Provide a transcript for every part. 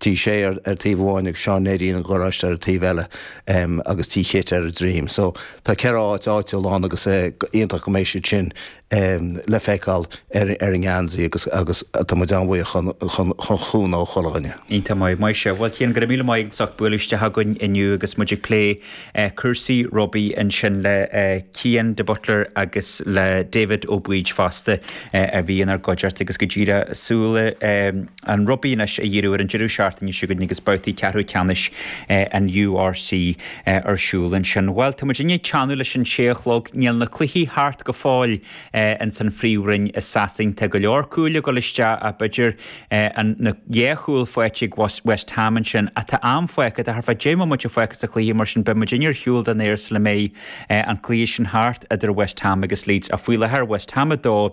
Tí Shé ar taobh amháin agus Seán Néidín an gharáiste ar an taobh eile agus Tí Chit ar a droim. So tá ceithre áit áitiúl ann agus iontach go mbeidh siad sin le feiceáil ar an ngeansaí agus tá muid an-bhuíoch don chúnamh ó chuile dhuine. Iontach maith. Maith sibh. Bhuel Chian, go raibh míle maith agat as ucht bualadh isteach chugainn inniu agus muid ag plé cúrsaí rugbaí ansin le Cian de Butler agus le David Ó Baoid fosta a bhí inár gcuideacht agus go dtí le súil. an rugbaí anois a dhíriú ar an deireadh seachtaine seo chugainn agus babhtaí ceathrú ceannais an URC ar siúl ansin. Bhuel, tá muid i ndiaidh teannadh leis an sé a chlog. Níl na cluichí thart go fóill ins an phríomhroinn i Sasain. Tá go leor cúil ag dul isteach ach b'fhéidir an na dhá chúl faighte ag West Ham ansin. Ach tá am fágtha, tá thart fá dheich mbomaite fágtha sa chluiche mar sin beidh muidinne ar shiúl den aer sula mbeidh an cluiche sin thart idir West Ham agus Leeds. Ach faoi láthair, West Ham 2,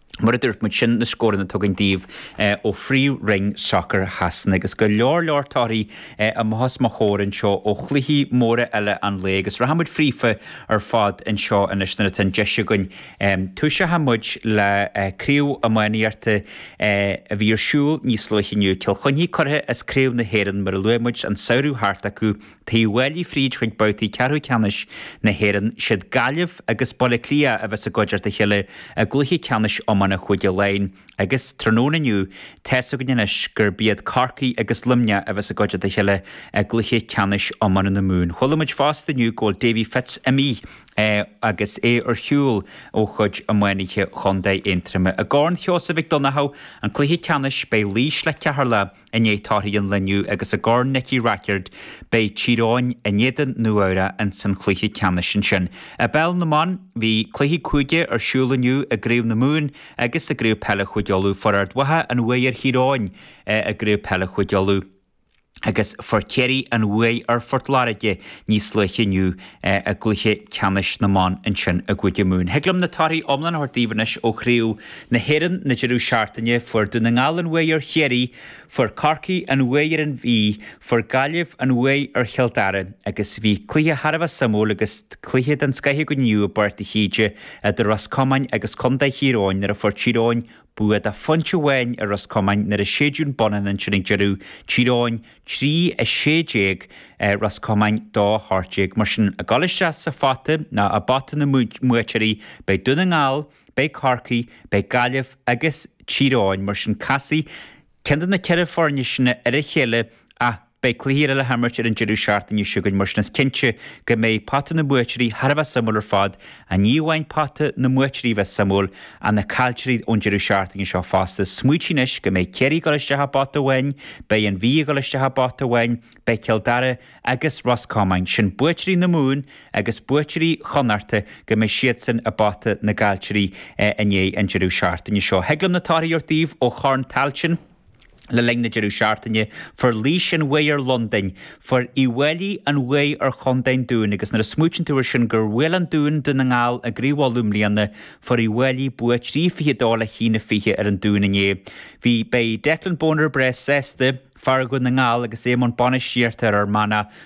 Mar a dúirt muid, sin na scóranna tugtha againn daoibh ó phríomhroinn sacair Shasana, agus go leor leor torthaí amuigh os mo chomhair anseo ó chluichí móra eile an lae, agus rachaidh muid fríofa ar fad anseo anois nuair atá an deis againn. Tosóidh muid le craobh iománaíochta a bhí ar siúl níos luaithe inniu, Cill Chainnigh curtha as craobh na hÉireann mar a luaigh muid an samhradh thart acu, Tá Uíbh Fhailí fríd chuig babhtaí ceathrú ceannais na hÉireann, siad Gaillimh agus Baile Átha Cliath a bheas i gcuideacht a chéile i gcluiche ceannais iomána Chúige Laighin agus tráthnóna inniu tá's againn anois gurb iad Corcaigh agus Luimneach a bheas i gcuideacht a chéile i gcluiche ceannais iomána na Mumhan. Chuala muid fosta inniu go bhfuil Davy Fitz imithe agus é ar shiúl ó chuid iománaithe chontae Aontroma. I gCorn Sheosaimh Mhic Dhonnchadha, an cluiche ceannais, beidh Laois le Ceatharlach, I ndiaidh torthaí an lae inniu agus i gCorn Nicky Rackard, beidh Tír Eoghain in éadan Nua-Eabhrac ins an chluiche ceannais ansin. I bpeil na mban, bhí cluichí cúige ar siúl inniu i gCraobh na Mumhan agus i gCraobh Peile Chúige Uladh. Fuair Ard Mhacha an bhuaidh ar Thír Eoghain i gCraobh Peile Chúige Uladh agus fuair Ciarraí an bhuaidh ar Phort Láirge níos luaithe inniu. i gcluiche ceannais na mban ansin i gCúige Mumhan. Thig liom na torthaí iomlána a thabhairt daoibh anois ó Chraobh na hÉireann na deireadh seachtaine, fuair Dún na nGall an bhuaidh ar Chiarraí, fuair Corcaigh an bhuaidh ar an Mhí, fuair Gaillimh an bhuaidh ar Chill Dara agus bhí cluiche thar a bheith suimiúil agus cluiche den scoith againn inniu i bPáirc de hÍde idir Ros Comáin agus Contae Thír Eoghain nuair a fuair Tír Eoghain bua de phointe amháin ar Ros Comáin nuair a séideadh an bonnán ansin ag deireadh Tír Eoghain trí 16 Ros Comáin dó 18, mar sin, ag dul isteach sa phota ná i bpota na mbuaiteoirí, beidh Dún na nGall, beidh Corcaigh, beidh Gaillimh agus Tír Eoghain, mar sin casfaidh ceann de na ceithre foirne sin ar a chéile ach beidh cluichí eile le himirt ar an deireadh seachtaine seo chugainn, mar sin is cinnte go mbeidh pota na mbuaiteoirí thar a bheith suimiúil ar fad Ach ní amháin pota na mbuaiteoirí bheith suimiúil, ach na caillteoirí ón deireadh seachtaine seo fosta, smaoitigh anois go mbeidh Ciarraí ag dul isteach i bpota amháin, beidh An Mhí ag dul isteach i bpota amháin, beidh Cill Dara agus Ros Comáin, sin buaiteoirí na Mumhan agus buaiteoirí Chonnachta, go mbeidh siadsan i bpota na gcaillteoirí i ndiaidh an deireadh seachtaine seo. Thig liom na torthaí a thabhairt daoibh ó Chorn Tailteann. Le linn na deireadh seachtaine, fuair Laois an bhuaidh ar Londain. Fuair Uí bhFáilí an bhuaidh ar Chontae an Dúin agus nuair a smaoiteann tú ar sin gur bhuail an Dún Dún na nGall i gCraobh Uladh i mbliana, fuair Uí bhFáilí bua trí fiche a dó le haon a fiche ar an Dún inné. Bhí Beidh Declan Bonner breá sásta, fear Dhún na nGall agus é i mbun bainistíochta ar Fhear Manach,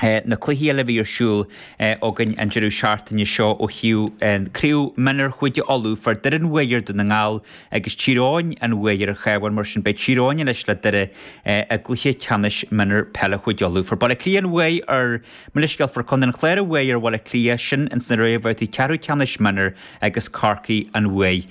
na cluichí eile a bhí ar siúl againn an deireadh seachtaine seo ó thaobh chraobh mionúr Chúige Uladh, fuair Doire an bhuaidh ar Dhún na nGall agus Tír Eoghain an bhuaidh ar an Chabhán, mar sin beidh Tír Eoghain anois le Doire i gcluiche ceannais mionúr peile Chúige Uladh. Fuair Baile Átha Cliath an bhuaidh ar Mo leithscéal, fuair Contae an Chláir an bhuaidh ar Bhaile Átha Cliath, sin ins na réamhbhabhtaí ceathrú ceannais mionúr agus Corcaigh an bhuaidh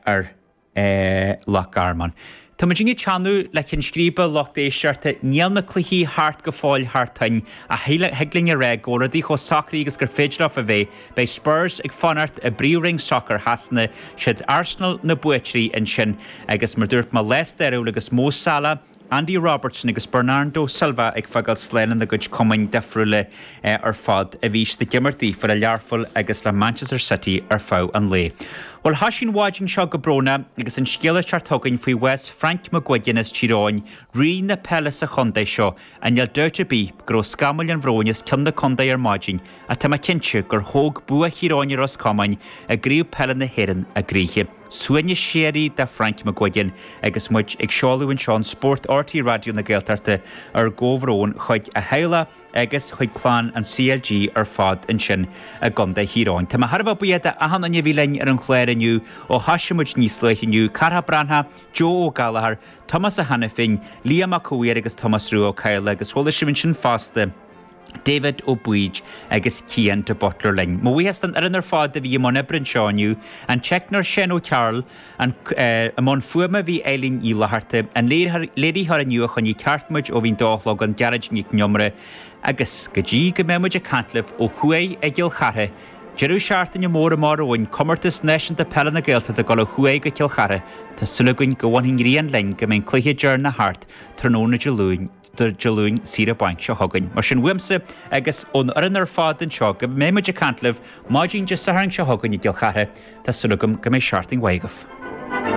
ar. Loch Garman. Tá muid ag teannadh le Ceann Scríbe, lucht éisteachta, níl na cluichí thart go fóill thar toinn, ach thig linn a rá go bhfuil rudaí chomh socraithe agus is féidir leofa a bheith, beidh Spurs ag fanacht i bpríomhroinn sacair Shasana, is iad Arsenal na buaiteoirí ansin, agus mar dúirt mé, lá stairiúil agus Mo Salah, Andy Robertson agus Bernardo Silva ag fágáil slán lena gcuid cumainn difriúla ar fad, a bhí siad ag imirt daofa le Learpholl agus le Manchester City ar feadh an lae. Bhuel, thosaigh an mhaidin seo go brónach agus an scéal ag teacht chugainn faoi bhás Frank McGuigan as Tír Eoghain, Rí na peile sa chontae seo, agus níl dabht ar bith go raibh scamaill an bhróin as cionn na contae ar maidin ach tá mé cinnte gur thóg bua Thír Eoghain ar Ros Comáin i gCraobh Peile na hÉireann a gcroíthe. Suaimhneas síoraí do Frank McGuigan agus muid ag seoladh anseo i Spórt RTÉ Raidió na Gaeltachta ár gcomhbhrón chuig a theaghlach agus chuig clann an CLG ar fad ansin i gContae Thír Eoghain. Tá mé thar a bheith buíoch de achan duine a bhí linn ar an chlár inniu ó thoisigh muid níos luaithe inniu, Carthach Breathnach, Joe Ó Gallchóir, Tomás Ó hAiniféin, Liam Mac Cómhaoir agus Tomás Rua Ó Cadhla agus chuala sibh ansin fosta David Ó Baoid agus Cian de Butler linn. Mo bhuíochas don fhoireann ar fad a bhí i mbun oibre anseo inniu, an teicneoir Seán Ó Cearúill, i mbun fuaime bhí Eileen Ní Fhlatharta, an léiritheoir inniu a choinnigh ceart muid ó bhí an dó a chlog ann Gearóid Nic an Iomaire agus, go dtí go mbeidh muid ag caint libh ó thuaidh i gCill Chartha deireadh seachtaine mór amach romhainn, Comórtas Náisiúnta Peile na Gaeltachta ag dul ó thuaidh go Cill Chartha, tá súil againn go bhfanfaidh an ghrian linn go mbeidh an cluiche deireanach thart tráthnóna Dé Luain. Dé Luain saoire bainc seo chugainn. Mar sin, uaimse agus ón fhoireann ar fad anseo, go mbeidh muid ag caint libh maidin Dé Sathairn seo chugainn i gCill Chartha, tá súil agam go mbeidh seachtain mhaith agaibh.